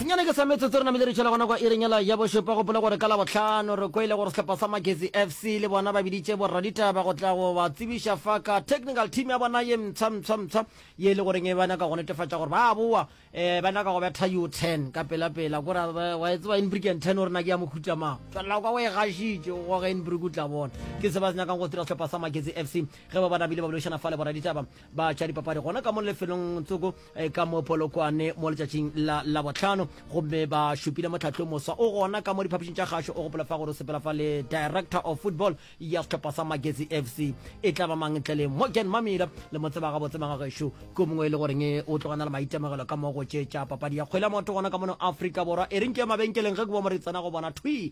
senyane ke sa metsotso re namile re tšhela gona kwa irenyela ya bošopa gopole gore ka labohlano re kwele gore sehlopha sa magezi fc le bona ba biditše borraditaba go tla go ba tsebiša fa ka technical team ya bona ye mtshamtshamtsha ye e le goreng e ba nyaka go netefatša gore ba boa um ba nyaka go betha u ten ka pelapela kore wa e tseba inbrick and ten o re na ke ya mohuta mang tšwelela kwa o e gašitše o goga inbrick o tla bona ke se ba se nyakang go dira sehlopha sa magezi fc ge ba ba namile ba boledišana fa le borraditaba ba tša dipapadi gona ka mo lefelong tsoko eh, ka mo polokwane mo letšatšing la labotlhano gomme ba šupile motlhatlho moswa o gona ka mo diphapišing tša kgašo o gopola fa gore o sepela fa le director of football ya setlhopha sa magezi f c e tla ba mang ntle le morgan mamila le mo tseba gabotse magagešo ke mongwe e le goreng o tlogana le maitemogelo ka mo go tše tša papadi ya kgwele ya maoto gona ka mono afrika borwa e reng ke ya mabenkeleng ge ke bo moretsana go bona thwi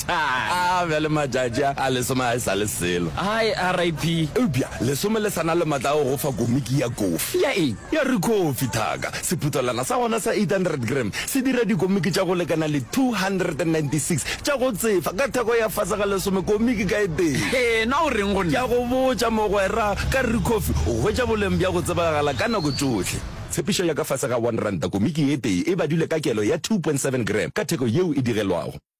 Satan. A bjale matšatši a, a lesome a e sa le selo. Hai, RIP. Eupša lesome le sa na le matla a go go fa komiki ya kofi. Ya eng? Ya re kofi, thaka. Sephuthelwana sa gona sa 800 gram se dira dikomiki tša go lekana le 296 tša go tsefa ka theko ya fase ga lesome komiki ka e tee. Hee, na o reng go nna? Ke a go botša, mogwera, ka re kofi o hwetša boleng bja go tsebagala ka nako tšohle. Tshepišo ya ka fase ga one ranta komiki ye tee e badilwe ka kelo ya 2.7 gram ka theko yeo e digelwago.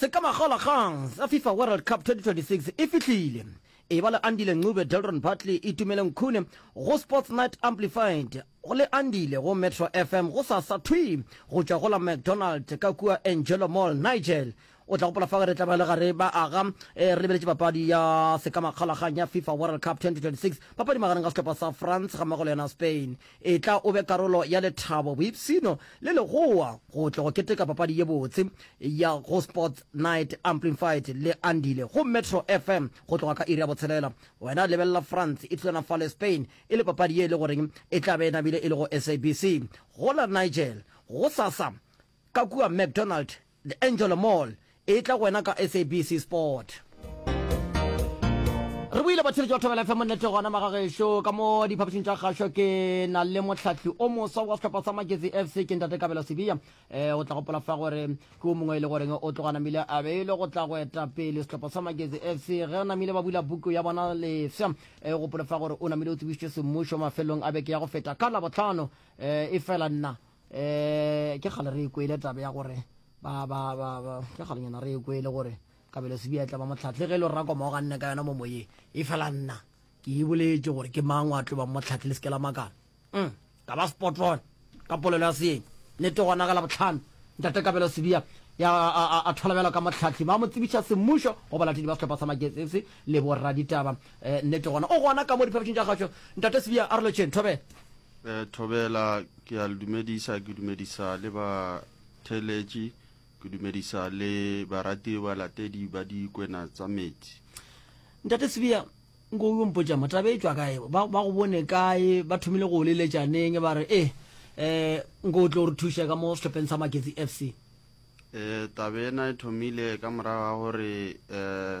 se ka magolakgang sa fifa world cup 2026 e fihlile e ba le andile ncube delron bartley e tumele nkhune go sports night amplified go le andile go metro fm go sa sa thwi go tšwa go la mcdonald ka kua angelo mall nigel o tla gopola fa re tla ba le gare ba aga eh, re lebeletše papadi ya sekamakgolakgang ya fifa world cup 2026 papadi magareng ga sehlopha sa france ga mmogo le yona spain Etla o be karolo ya lethabo, boipshino le legowa go tla go keteka papadi ye botse ya go Sports Night Amplified le Andile go Metro FM go tloga ka iri ya botshelela. Wena lebelela France e thulana fa le Spain e le papadi ye e le goreng e tla be e namile e le go SABC go la Nigel gosasa ka kua McDonald The Angelo Mall e tla go wena ka SABC Sport. Re boile batheletši ba Thobela FM nnete gona magagešo ka mo diphapošing tša kgašo ke na le mohlahli o moswa wa sehlopha sa Magezi FC ke ntate Kabelo Sibiya eh, o tla gopola fa gore ke o mongwe e le goreng o tloga namile a beilwe go tla go eta pele sehlopha sa Magezi FC ge namile ba bula buku ya bona lefsa eh, o gopole fa gore o namile o tsebišitše semmušo mafelong a beke ya go feta ka labotlhano eh, e fela nna um ke kgale re e kwele tabe ya gore ke kgalenyana re e kwele gore kabelo sebiatla ba motlhatlhe ge e le rra koma o ganne ka yona mo moyeng e fela nna ke e boletse gore ke mang wa tlo bang motlhatlhe le se ke la makala mm, ka ba spotron ka polelo ya seeng nete gona ka labotlhano ntate kabelo sebia ya a tholabela ka motlhatlhi ba mo tsebiša semmušo go balatedi ba setlhopha sa maketsese le borraditaba Ee, nnete gona. O gona ka mo diphapošing tša kgašo, Ntate Sibiya, Arolotšheng, Thobela. Ee, Thobela, ke a le dumedisa, ke dumedisa le batheeletši, ke dumedisa le baratiwe balatedi ba Dikwena Tsa Meetse. Ntate Sibiya, nko o yo mpotša mo, taba e tšwa kae? Ba, ba go bone kae? Ba thomile go o leletša neng, ba re, Ee, ee, nko o tle o re thuše ka mo sehlopheng sa Maketsi FC? Ee, taba ena e thomile ka morago ga gore, ee,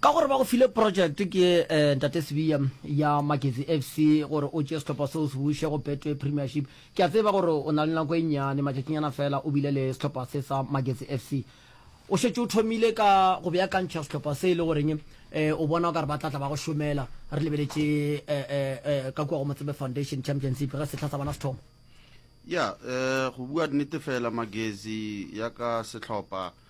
Ka gore ba go file project ke Ntate Sibiya ya Magezi FC gore o tšee sehlopha seo se buše go Betway Premiership. Ke a tseba gore o na le nako e nnyane, matšatšinyana feela o bile le sehlopha se sa Magezi FC. O šetše o thomile ka go beakantšha sehlopha se e le goreng o bona o ka re ba tla tla ba go šomela. Re lebeletše ka kua go Motsebe Foundation Championship ge sehla sa bona se thoma. Ya, go bua nnete feela Magezi ya ka sehlopha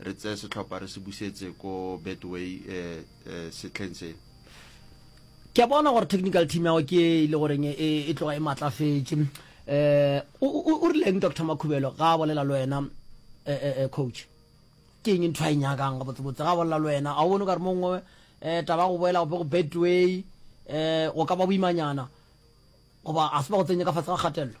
re tseye setlhopha re se busetse ko betway setlheng se ke a bona gore technical team yago ke e le goreng e, e, e tloga e matlafetše um eh, o rileng dr makhubelo ga a bolela le wena eh, eh, coach ke eng ntho a e nyakang ga botsebotse ga a bolela le wena ga o bone o ka re mongwe um taba go boela gope go betway um go ka ba boimanyana goba a se ba go tsenye ka fatshe ga kgatelelo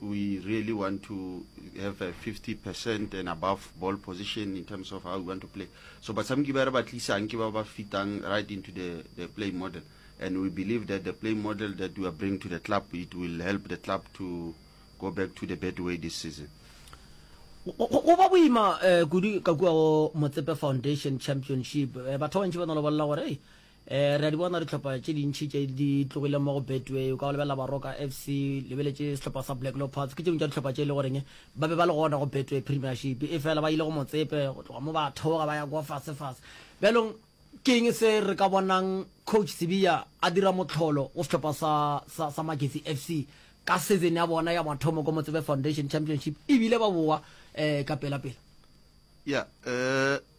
We really want to have a 50 percent and above ball position in terms of how we want to play. So batsamiki ba re ba tlisang ke ba ba fitang right into the, the play model. And we believe that the play model that we are bringing to the club, it will help the club to go back to the bad way this season. go ba boima um kudu ka kua go motsepe foundation championship eh, batho ba bantši ba no le bolela gore E, re a di bona dihlopha tše dintši tše di tlogile mo go Betway. O ka go lebelela Baroka FC, lebeletše sehlopha sa Black Leopards. Ke tše dingwe tša dihlopha tše e le goreng ba be ba le gona go Betway Premiership. E fela ba ile go Motsepe, go tloga mo ba theoga ba ya kwa fasefase. Bjalong ke eng se re ka bonang Coach Sibiya a dira mohlolo go sehlopha sa, sa, sa Magesi FC ka season ya bona ya mathomo ko Motsepe Foundation Championship e bile ba bowa um ka pelapela? Yeah, um.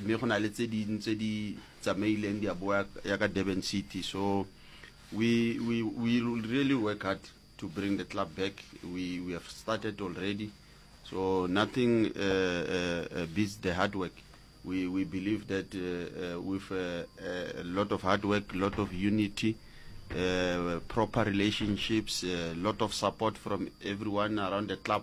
mme go na le tse ding tse di tsamaileng di a boa ya ka Durban City so we, we, we will really work hard to bring the club back we, we have started already so nothing uh, uh, uh beats the hard work we, we believe that uh, uh, with uh, uh, a lot of hard work a lot of unity uh, proper relationships a uh, lot of support from everyone around the club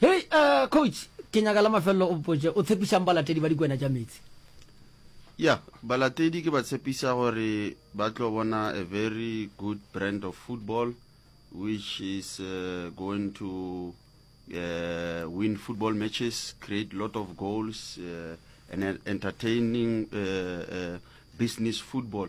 Hei, uh, coach, ke nyaka la mafelelo o mpotše, o tshepišang balatedi ba dikwena tša meetse? Ya, balatedi ke ba tshepiša gore ba tlo bona a very good brand of football which is uh, going to uh, win football matches, create lot of goals, uh, and entertaining uh, uh, business football.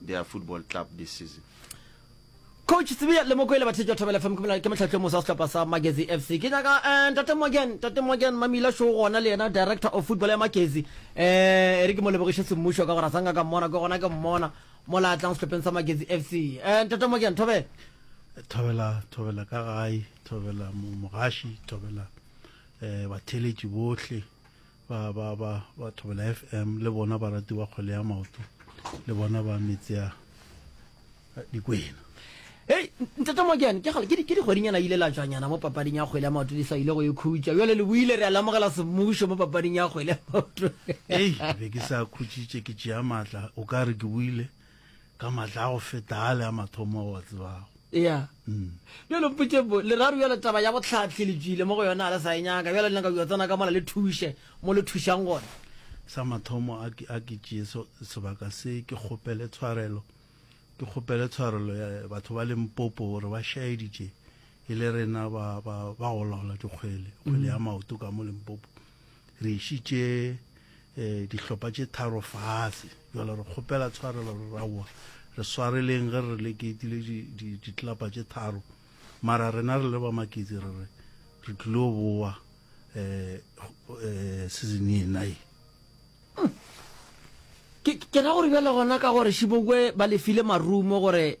their football club this season. Coach Tsibia le Mokwele ba thetšwa Thobela FM ke motlhatlo mosa wa sehlopha sa Magezi FC. Ke nyaka eh Ntate Mogen, Ntate Mogen Mamila Show gona le yena director of football ya Magezi. Eh re ke mo lebogiše semmušo ka gore a sanga ka mmona ke gona ke mmona mo la tlang sehlopheng sa Magezi FC. Eh Ntate Mogen Thobela. Thobela Thobela ka gae, Thobela mogashi, Thobela eh batheletši bohle ba ba ba ba thobela fm le bona ba ratiwa kgwele ya maoto le bona ba metsea dikwena Hey, ntate Mokene, ke gale ke di- ke dikgwedinyana ile la tswanyana mo papading ya kgwele ya maoto di sa ile go e khutša jale le buile re a lamogela semmušo mo papading ya kgwele ya maoto ei be ke sa khutšitše ke tšea maatla o ka re ke buile ka matla a go feta a le a mathomo a wa tsebago ya mm. bjalo mpotše bo leraro bjalo taba ya botlhatlhi le tswile mo go yona a le sa e nyaka bjalo le nyaka bjo tsena ka mola le thuše mo le thušang gona sa mathomo a ke tšee sebaka se ke kgopele tshwarelo ke kgopele tshwarelo ya batho ba leng popo gore ba šaeditše e le rena ba ba ba go laola dikgwele kgwele ya mm. maoto ka mo limpopo Re išitše eh, dihlopa tše tharo fase. Jwale re kgopela tshwarelo, re raoa. Re swareleng ge re re le keitile di, di, ditlapa tše tharo. Mara rena re le ba maketsi re re re tlilo boa eh, eh, season ye na ye. Ke, ke ra gore bjale gona ka gore Shibokwe ba lefile marumo gore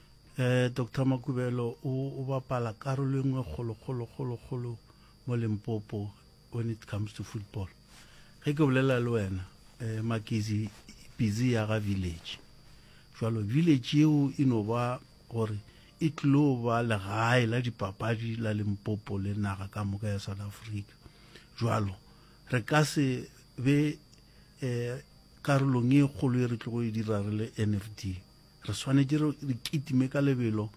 Doctor Makubelo o o bapala karolo e nngwe kgolo kgolo kgolo kgolo mo Limpopo when it comes to football. Ge ke bolela le wena Makizi Pizi ya ga village jwalo village yeo e no ba gore e tlilo ba legae la dipapadi la Limpopo le naga ka moka ya South Africa. Jwalo re ka se be karolong e kgolo e re tlogo e dira re le NFD. Re swanetše re, re kitime ka lebelo,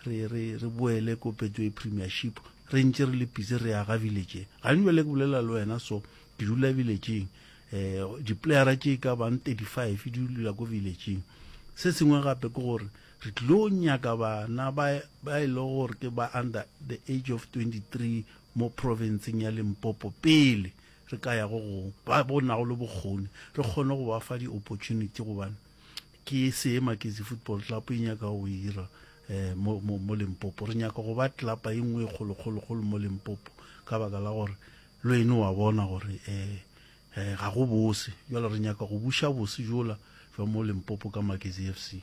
re, re, re boele ko Betway Premiership, re ntše re le pitse re aga village ye. Gane bjale ke bolela le wena so, ke dula village-ing. Um, diplayera tše e ka bang 35 di dula ko village-ing. Se sengwe gape ke gore re tlilo nyaka bana ba, ba e lego gore ke ba under the age of 23 mo province-eng ya Limpopo pele re ka ya go gongwe, ba, ba nago le bokgoni, re kgone go ba fa di-opportunity gobane Ke se Maketsi Football Club e nyaka go ira mo, mo, mo Limpopo. Re nyaka go ba tlelapa e nngwe e kgolo, kgolo, kgolo mo Limpopo, ka baka la gore lwene wa bona gore um ga go bose. Jwale re nyaka go buša bose jola jwa mo Limpopo ka Maketsi FC.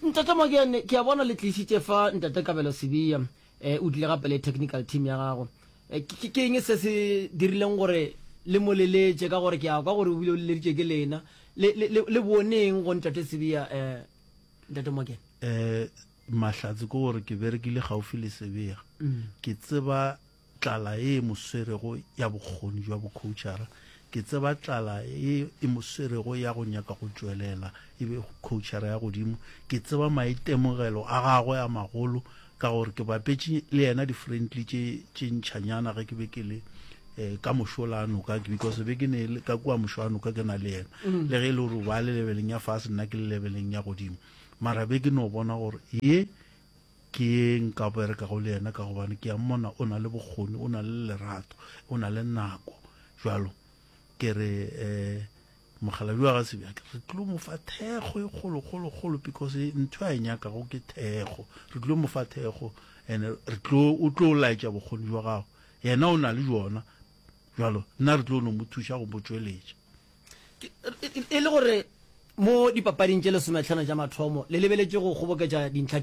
Ntate Mokene, ke a bona le tlišitše fa Ntate Kabelo Sibiya. um o tlile gape le technical team ya gago um ke eng se se dirileng gore le mo leletše ka gore ke a kwa gore o bile o leleditše ke lena le boneng go ntate sebia um ntate mokena um mahlatse ke gore ke berekile gaufi le sebia mm. ke tseba tlala e e moswerego ya bokgoni jwa bocoachara ke tseba tlala e e moswerego ya go nyaka go tšwelela e be coachara ya godimo ke tseba maitemogelo a gagwe a magolo Ka gore ke bapetše le yena di-friendly tše tše ntšhanyana ge ke be ke le um ka mošo la noka because be ke ne le ka kua mošo a noka ke na le yena mm. le ge e le gore o ba le lebeleng ya fase nna ke le lebeleng ya godimo mara be ke no bona gore ye ke ye nka berekago le yena ka gobane ke ya mmona o na le bokgoni o na le lerato o na le nako jalo ke re um Mokgalabje wa ga Sebjake re tlo mo fa thekgo e kgolokgolokgolo because ntho a e nyakago ke thekgo. Re tlo mo fa thekgo and re tlo o tlo laetša bokgoni jwa gago. Yena o na le jona jalo nna re tlo no mo thuša go mo tšweletša. E le gore mo dipapading tše lesometlhano tša mathomo le lebeletše go kgoboketša dintlha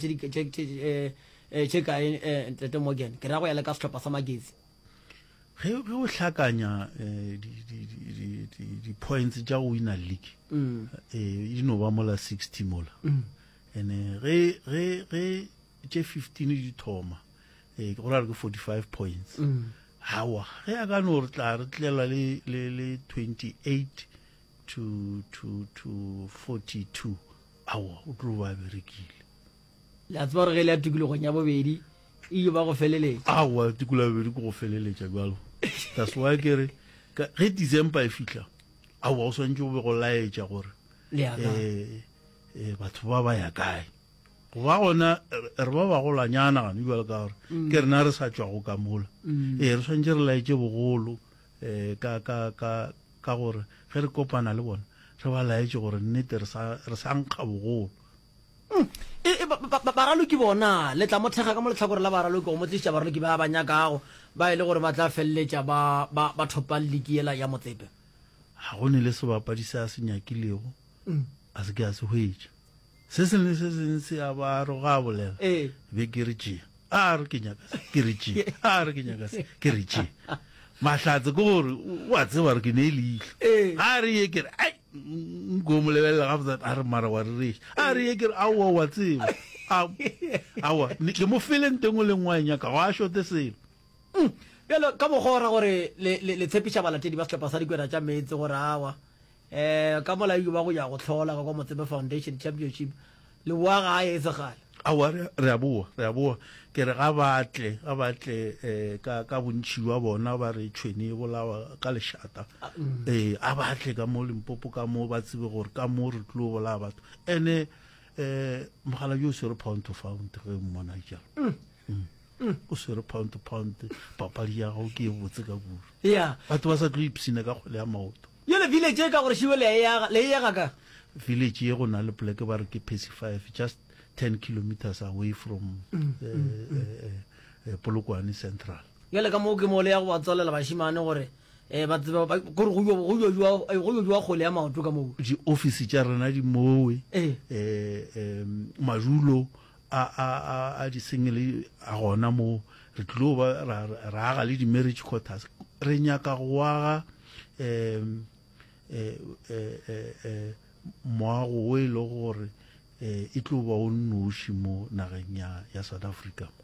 tše kae Ntate Morgan, ke ra go ya le ka sehlopha sa Magezi? ge o hlakanya di-points tša go wina league e no ba mola sixty mola ene ge tše fifteen di thoma go ra re ke forty five points gawa ge a ka no re tla re tlela le twenty eight to forty two awa o tlo ba berekile Le a tseba gore ge e le ya tikologong ya bobedi, e yo ba go feleletša. Aowa, tikologo ya bobedi ke go feleletša bjalo. That's why ke re, ka, ge December e fihla, aowa, go swantše go be go laetša gore, Le ya kae? eh, eh, batho ba ba ya kae. Go ba gona, re re ba bagolanyana gane bjalo ka gore, ke rena re sa tšwago ka mola. Ee, re swantše re laetše bogolo, eh, ka, ka, ka, ka gore ge re kopana le bona, re ba laetše gore nnete re sa, re sa nkga bogolo. E, e, ba, ba, baraloki bona, le tla mo thekga ka mo lehlakore la baraloki, go mo tlišitša baraloki ba ba nyakago, ba e le gore ba tla feleletša ba, ba, ba thopang liki yela ya motsepe. Ga go ne le sebapadi se a se nyakilego, mm. a se ke a se hwetša. Se sengwe le se sengwe se a ba re go a bolela, e. be ke re tšea, a re ke nyaka se, ke re tšea, a re ke nyaka se, ke re tšea. Mahlatse ke gore, o a tseba gore ke ne e leihlo. E. A re ye ke re, ai, Nko mo lebelela ga botsa a re mara wa rereša a re ye ke re aowa wa tseba aowa ke mo fele nteng o leng wa e nyaka go a šote selo mm, bjalo ka mokgwa o ra gore le tshepiša balatedi ba sehlopha sa dikwena tša meetse gore awa um ka mola ba go ya go hlola ka kwa motsebe foundation championship Leboa ga a etsagale. Aowa, re, re a boa, re a boa. Ke re ga ba tle, ga ba tle eh, ka, ka bontši bja bona ba re tšhwene e bolawa ka lešata. Eh, a ba tle ka mo Limpopo ka mo, ba tsebe gore ka mo re tlo bolaya batho. Ene eh, mogala jo o swere pound to found ge o mmona e jalo. Mm. o swere pound to pound papadi ya gago ke e botse ka kudu Yeah. batho ba sa tlo ipsina ka kgwele ya maoto Bjale village ye ka gore šiwe le a e aga, le e aga ka? Village ye go na le poleke ba re ke Percy Five, just ten kilometres away from Polokwane Central. Bjale ka moo ke mo le ya go ba tswalela bašimane gore ba tsebe ba, gore go yo, go yo jwa, go yo jwa kgole ya maoto ka moo. Di office tša rena di mowe, madulo a, a, a, a di-single a gona mo re tlilo ba ra, ra aga le di-marriage quarters re nyaka go aga um eh, eh, eh, eh, moago o e le gore eh, e tlo ba o nnoši mo nageng ya, ya south africa mo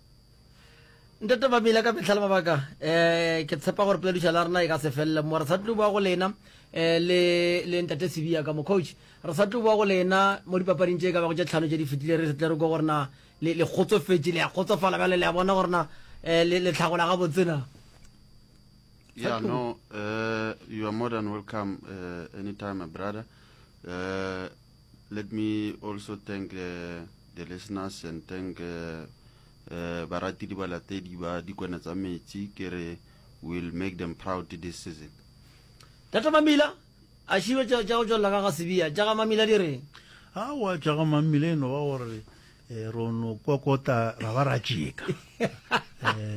ntate mamile ka metlha le mabaka um ke tshepa gore polediša la rena e ka se felele mo re sa tlo bua go lena um le ntate sebia ka mo coach re sa tlo bua go lena mo dipapading tše e ka bago tše tlhano tše di fetile re tle re ko gorena le kgotsofetše le ya kgotsofala bjale le ya bona gorena um le tlhagola ga botsena Yeah, no, uh, you are more than welcome uh, anytime, my brother. Uh, Let me also thank uh, the listeners and thank uh, uh, baratedi balatedi ba dikone tsa metsi ke re will make them proud this season tata mamila a šibe tša go tšwelela ka ga sebia tša ga mamila di reng awa tša ga mamila e no ba gore Eh, ro no kokota ra ba ra tšeka eh,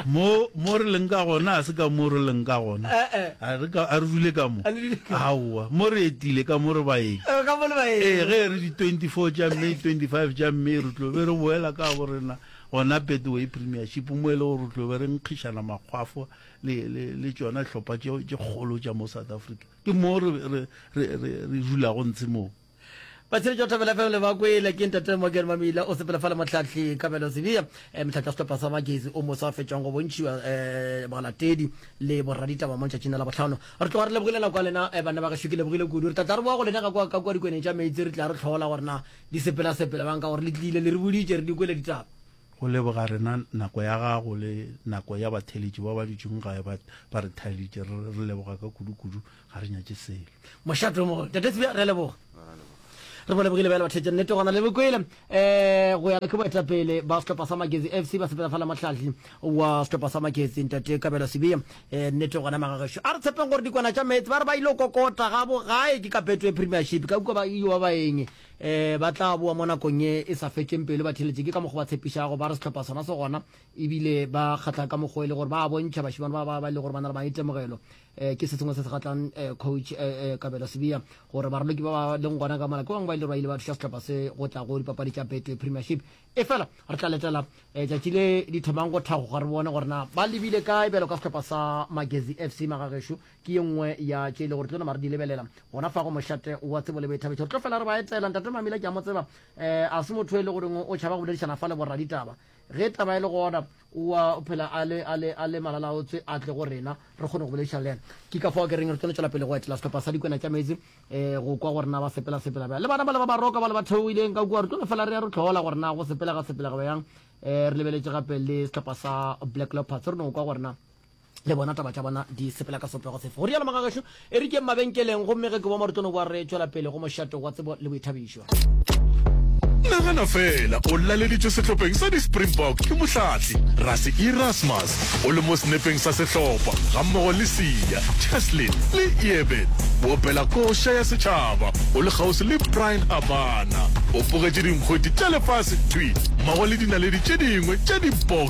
mo mo re leng ka gona a se ka mo re leng ka gona eh, eh. a re ka a re dule ka mo aowa mo re etile ka mo re ba eng ka mo le ba eng eh ge re di 24 ja mme 25 ja mme re tlo be re boela ka bo rena gona betway premiership mo e le gore re tlo be re nkgishana makgwafo le le le tsona hlopha tše tše kgolo tša mo south africa ke mo re re re re dulago ntshe moo Batsheletši ba Thapelo FM le ba kwele ke Ntate Morgan Mamila o sepela fa le Mohlahli Kabelo Sibiya, eh, mohlahli wa sehlopha sa Magezi o moswa a fetšwang go bontšhiwa eh, balatedi le boraditaba mo ntšatšing la bohlano. Re tloga re lebogile nako ya lena eh, banna ba gešo ke lebogile kudu. Re tla tla re boa go lena ka kwa ka kwa dikweneng tša meetse re tla re tlhola gore na di sepela sepela bang ka gore le tlile le re boditše re di kwele ditaba. go leboga rena nako ya gago le nako ya batheletši ba ba dutšeng gae ba ba re thaelitše re re leboga ka kudukudu ga re nyatše selo mošato mo tate tsebja re leboga re bole bogile bjale bathetša nnete gona le bokwele um eh, go ya ke boetapele ba setlhopha sa maketsi f c ba sepela fala motlhatlhi wa setlhopha sa maketsi ntate kabelo sebia um eh, nnete gona magagešo a re tshepeng gore dikwana tša meetse ba re ba ile kokota ga bogae ke kapeto ya premiership ka kua ba iwa baeng um eh, ba tla boa mo nakong e e sa fetšeng pelo ba theletše ke ka mokgwa ba tshepišago ba re setlhopha sona se gona ebile ba kgatlha ka mokgwa e le gore ba bontšha bašimane ba ba ba e le gore ba na le maitemogelo eh, ke se sengwe se se gatlang eh, coach eh, eh, kabelo sebia gore baraloki ba ba leng gona ka mala ke bangwe ba ile ba ile ba thuša setlhopha se go tla go dipapadi tša betway premiership e fela re tla letela eh, tšatši le di thomang go thagoga re bone gore na ba lebile kae bjalo ka setlhopha sa magezi fc magagešo ke ye nngwe ya tše e le gore tlo nama re di lebelela gona fa go mošate wa tsebo le boithabetšo re tlo fela re ba etela ntate mamila ke a mo tseba um a se motho e le goreng o tšhaba go boledišana fa le borraditaba ge taba e le gona wa phela a le a le a le malalaotswe a tle go rena re kgone go boledišana le yena ke ka fao ke reng re tlo tswela pele go etela sehlopha sa dikwena tša meetse um go kwa gore na ba sepela sepela bjang le bana ba le ba baroka ba le ba theogileng ka kua re tlo no fela re ya re tlhola gore na go sepelega sepelega bjang um re lebeletše gape le sehlopha sa black leopards re no kwa gore na Le bona taba tša bona di sepela ka sopego sefe? Go rialo Magagešo. E re keng mabenkeleng gomme ge ke boa mo re tlo no boa re tšwela pele go mošato wa tsebo le boithabišo. Nagana fela, o laleditšwe sehlopeng sa di-Springbok ke mohlatli Rassie Erasmus. O le mo senepeng sa sehlopha gammogo le Siya, Cheslin le Eben. O opela koša ya setšhaba, o le kgauswi le Bryan Habana. O bogetše dinkgweti tša lefase thwi mmogo le dinaledi tše dingwe tša di-boxing.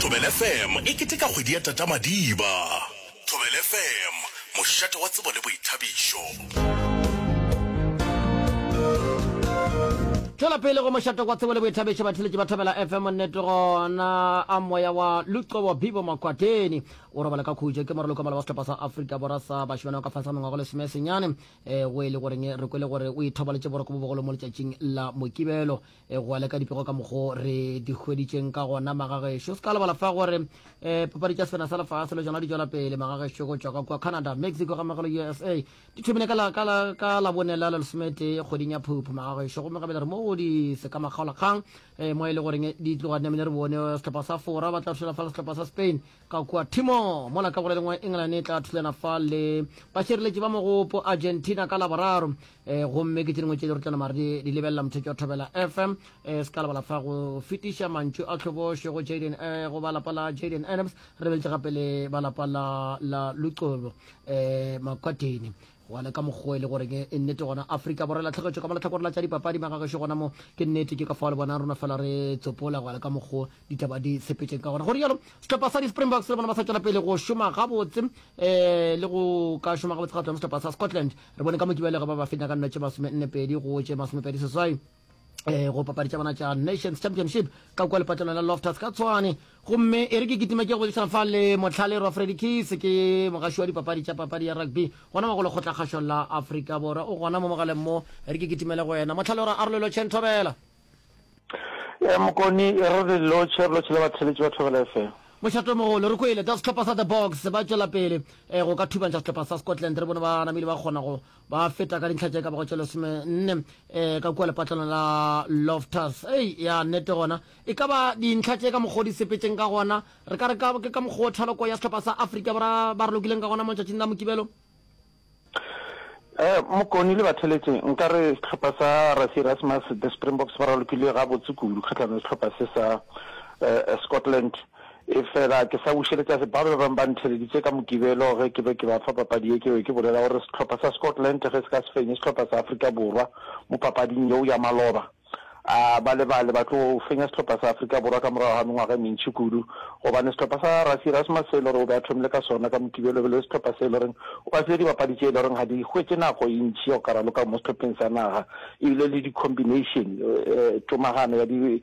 Thobela FM e keteka kgwedi ya Tata Madiba. Thobela FM, mošate wa tsebo le boithabišo. Tšwela pele go mošate wa tsebo le boithabišo, batheletši ba Thobela FM. Nnete gona a moya wa Luxobo Bibo Makwateni o robala ka khutšo. Ke moralokomalo wa sehlopha sa Afrika Borwa sa bašemane wa ka fase ga mengwago lesome senyane, go e le goreng re kwele gore o ithobaletše boroko bo bogolo mo letšatšing la Mokibelo. e go aleka dipego ka mokgo re di hweditšeng ka gona magagešo se ka lebala fa gore um papadi tša sena sa lefase le tsona di tšwela pele magagešo go tšwa ka kua canada mexico ga magalo usa di thomile ka labone la lesomete kgweding ya phuphu magagešo gomme gabele re mo go di se ka makgaolakgang um mo e le goreng di tloga namile re bone setlhopha sa fora ba tla šola fa le setlhopha sa spain Ka kua Timor, mola ka go le lengwe England e tla thulana fa le bašireletši ba mogopo Argentina ka Laboraro. E, gomme ke tše dingwe tšeo re tla nama re di lebelela mothetši wa Thobela FM. E, se ka lebala fa go fetiša mantšu a tlhobošo go Jaden, e, go ba lapa la Jaden Adams, re lebeletše gape le ba lapa la, la Luqobo e, Makwatini. Bjale ka mokgwa e le goreng e nnete gona Afrika Borwa e latlhegetšwe ka mo lehlakore la tša dipapadi maka gešo gona mo ke nnete ke ka fao le bona rona fela re tsopola bjale ka mokgwa ditaba di sepetšeng ka gona go rialo sehlopha sa di-Springboks le bona ba sa tšwela pele go šoma gabotse um le go ka šoma gabotse ga tsona sehlopha sa Scotland re bone ka mo ke bjale ge ba ba fenya ka nno tše masome nne pedi go tše masome pedi seswai um go papadi tša bona tša nations championship ka kua lepatlelong la loftus ka tshwane gomme e re ke kitima ke go boledišana fa le motlhale rwa fredi case ke mogaši wa dipapadi tša papadi ya rugby gona magolo kgotlakgašo la afrika borwa o gona mo mogaleng mo re ke kitimele go wena motlhale ora arolelo chen thobela e mokoni e re re lotšhe re lotšhe le batheletši ba thobela fm mošato mogolo re kwele tsa setlhopha sa the box ba tšwela pele um go ka thubantšha setlhopha sa scotland re bone ba namile ba kgona go ba feta ka dintlha tše ka bago tše lesome nne um eh, ka kua lepatlana la loftus ei ya nnete gona e ka ba dintlha tše ka mokgwa o di sepetseng ka gona re ka re ke ka mokgwa o thaloko ya setlhopha sa afrika bora ba re lokileng ka gona mo tšatšing la mokibelo eh, mokoni le batheletše nka re setlhopha sa rasi rasmus the springboks ba ralokile ga botse kudu kgatlhano setlhopha se sa eh, scotland Efela ke sa bušeletša se bao ba bego ba ntheleditše ka Mokibelo ge ke be ke ba fa papadi ye, ke be ke bolela gore sehlopha sa Scotland ge se ka se fenye sehlopha sa Afrika Borwa mo papading yeo ya maloba, a ba lebale ba tlo fenya sehlopha sa Afrika Borwa ka morago ga mengwaga e mentši kudu. Gobane sehlopha sa Rassie Erasmus se e le gore o be a thomile ka sona ka Mokibelo e be e le sehlopha se e le gore o ba file dibapadi tše e le gore ga di hwetše nako e ntši ya go ka raloka mo sehlopheng sa naga, e bile le di-combination, tomagano ya di,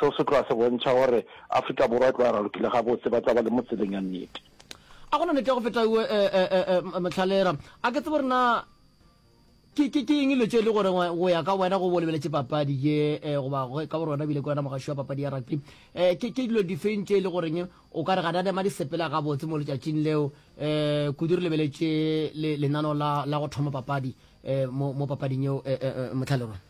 Seo se tloga se bontšha gore Afrika Borwa e tlo ya ralokile gabotse, ba tla ba le mo tseleng ya nnete. A go na nete ya go feta ewe, Mothalera? A ke tsebe gore na ke ke ke eng dilo tše e le gore go ya ka wena go bo lebeletše papadi ye eh, goba ka gore wena bile ke wena mogaši wa papadi ya rugby eh, ke ke dilo difeng tše e le goreng o ka re ga di a nema di sepela gabotse mo letšatšing leo eh, kudu re lebeletše le, lenano la, la go thoma papadi eh, mo, mo papading yeo eh, eh, eh, motlhalerwa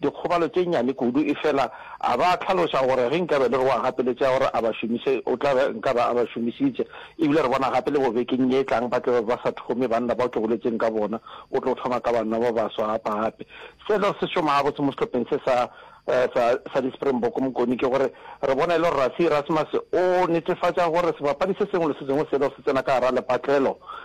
dikgobalo tše nnyane kudu, efela a ba hlaloša gore ge nkabe e le gore o a gapeletšega gore a ba šomiše, o tla be nka be a ba šomišitše. E bile re bona gape le gore bekeng ye e tlang ba tla be ba sa thome banna bao ke boletseng ka bona, o tlo thoma ka banna ba baswa gapegape. Selo se šoma gabotse mo sehlopheng se sa, sa, sa di-Springbok Mokoni ke gore re bona e le gore Rassie Erasmus o netefatša gore sebapadi se sengwe le se sengwe selo se tsena ka gare ga lepatlelo,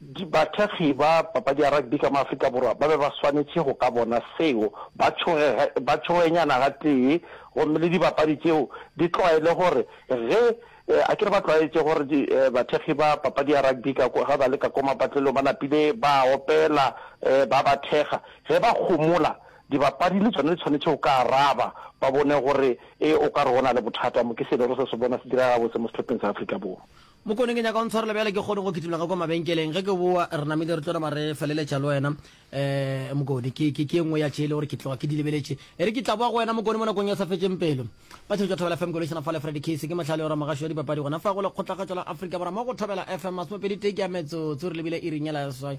Bathekgi ba papadi ya rugby ka mo Afrika Borwa ba be ba swanetše go ka bona seo, ba tšhoge, ba tšhogenyana gatee gomme le dibapadi tšeo di tlwaele gore ge, a ke re ba tlwaetše gore di, bathekgi ba papadi ya rugby ka ge ba le ka ko mapatlelong ba napile ba opela, ba ba thekga, ge ba kgomola, dibapadi le tšona di tshwanetše go ka araba, ba bone gore e o ka re go na le bothata mo. Ke se e lego se se bona se direga gabotse mo sehlopheng sa Afrika Borwa. Mokone, ke nyaka o ntshwarele bjale ke kgone go kitologa kwa mabenkeleng. Ge ke boa re namile re tlo nama re feleletša le wena. Um Mokone, ke, ke, ke e nngwe ya tše e le gore ke tloga ke di lebeletše. E re ke tla boa go wena Mokone mo nakong e sa fetšeng pelo. Batšweletši ba Thobela FM ke lošana fa le Freddy Case. Ke mohlale o ra mogašo ya dipapadi gona fa go lekgotlagatšo la Afrika Borwa mo go Thobela FM masomepedi tee ke ya metsotso re lebile iring ye la seswai.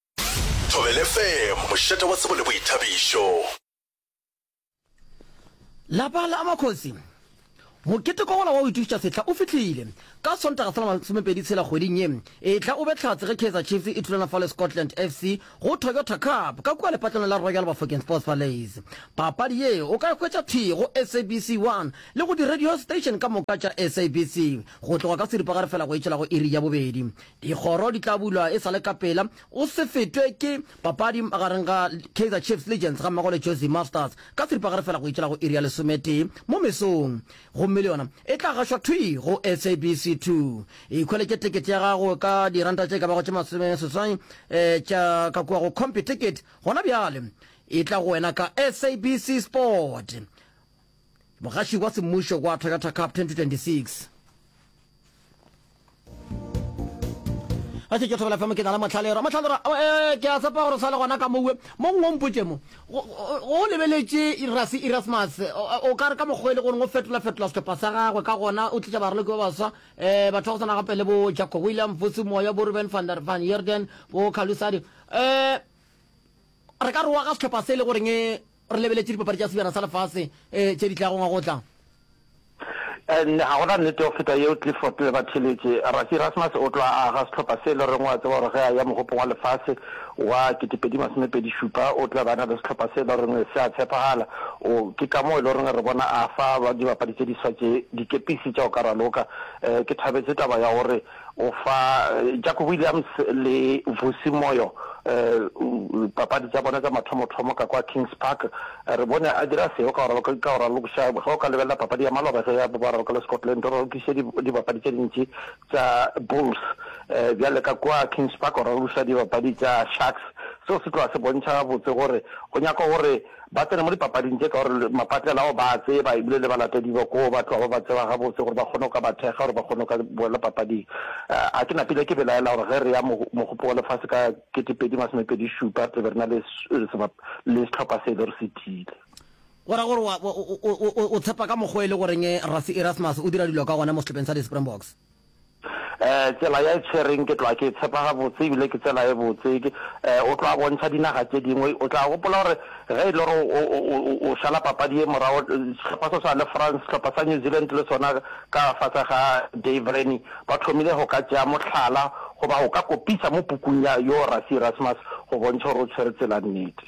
Thobela FM, mošate wa tsebo le boithabišo. Lapa la Makgosi. Mokete kwa gola wa go itušetša sehla o fihlile. Ka Sontaga sa la masomepedi tshela kgweding ye e tla o be tlhatse ge Kaizer Chiefs e thulana fa le Scotland FC go Toyota Cup ka kua lepatlelong la Royal Bafokeng Sports Palais. Papadi ye o ka e hwetša thwi go SABC 1 le go di-radio station ka moka tša SABC go tloga ka seripagare fela go e tšwela go iri ya bobedi. Dikgoro di tla bulwa e sa le ka pela go se fetwe ke papadi magareng ga Kaizer Chiefs le Legends gammogo le Jozi Masters ka seripagare fela go itšela go iri ya lesometee mo mesong gomme le yona e tla gašwa thwi go SABC 2. Ikhweletše tekete ya gago ka diranta tše ka bago tše masome seswai tša ka kua go Computicket gona bjale, e tla go wena ka SABC Sport. Mogaši wa Semmušo wa Toyota Cup 2026. a se ke thobela fm ke na le motlhalero motlhalero eh, ke a tsepa gore sa le gona ka mowe mo ngwe mpotse mo go lebeletše irasi erasmus o ka re ka mokgwa e le goreng o fetola-fetola setlhopha sa gagwe ka gona o tlisa baraloki ba baswa um batho ba go tsana gape le bo jacob william vosi moya bo ruben van van yerden bo calusadi um re ka re wa ga setlhopha se e le goreng Re lebeletše dipapadi tša Sebjana sa Lefase tše di tlago ngwaga o tlang. Nne ga go na nnete go feta yeo Clifford le Batheletše. Rassie Erasmus o tlo a aga sehlopha se e le goreng o a tseba gore ge a ya Mogopong wa Lefase wa ketepedi masome pedi šupa o tla be a na le sehlopha se e le goreng se a tshepagala. O, ke ka moo e le goreng re bona a fa dibapadi tše diswa tše dikepisi tša go ka raloka. Ke thabetše taba ya gore O fa Jack Williams le Vusi Moyo dipapadi tša bona tša mathomothomo ka kwa Kings Park. Re bone a dira seo ka go raloka ka go ralokiša. Ge o ka lebelela papadi ya maloba ge ya ba raloka le Scotland, o ralokiše dibapadi tše dintši tša Bulls. Bjale ka kwa Kings Park o ralokiša dibapadi tša Sharks. Seo se tloga se bontšha gabotse gore o nyaka gore Ba tsene mo dipapading tše ka gore mapatlela ao ba a tseba ebile le balatedi ba koo ba tloga ba ba tseba gabotse gore ba kgone go ka ba thekga gore ba kgone go ka boela papading. A ke napile ke belaela gore ge re ya Mogopo wa Lefase ka 2027 re tla be re na le sehlopha se e le gore se tiile. Go ra gore o tshepa ka mokgwa e le goreng Rassie Erasmus o dira dilo ka gona mo sehlopeng sa di-Springboks? Eh, tsela ya e tshwereng ke tloa ke e tshepa gabotse ebile ke tsela e botse. Ke, eh, o tloa bontšha dinaga tše dingwe. O tla gopola gore ge e le gore o, o, o, o, o šala papadi ye morago, sehlopha se swana le France, sehlopha sa New Zealand le sona ka fase ga Dave Rennie, ba thomile go ka tšea mohlala goba go ka kopisa mo pukung ya Yo Rassie Erasmus go bontšha gore o tshwere tsela nnete.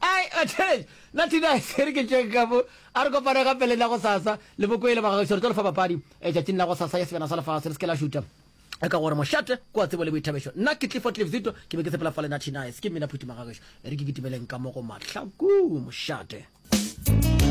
ai atheleng na thina se re ke tšeng ka mo a re kopana ka pele la go sasa le bokoele bagagešo re tlo lefa bapadi tšatšing la go sasa ya sebjana sa lefase le se ke la šuta e ka gore mošate ko a tsebo le boithabešo nna ke tlifo tlifzito ke be ke sepela fa lena thina se ke mmina phuti magagešo e re ke kitimeleng ka mo go mahlaku mošate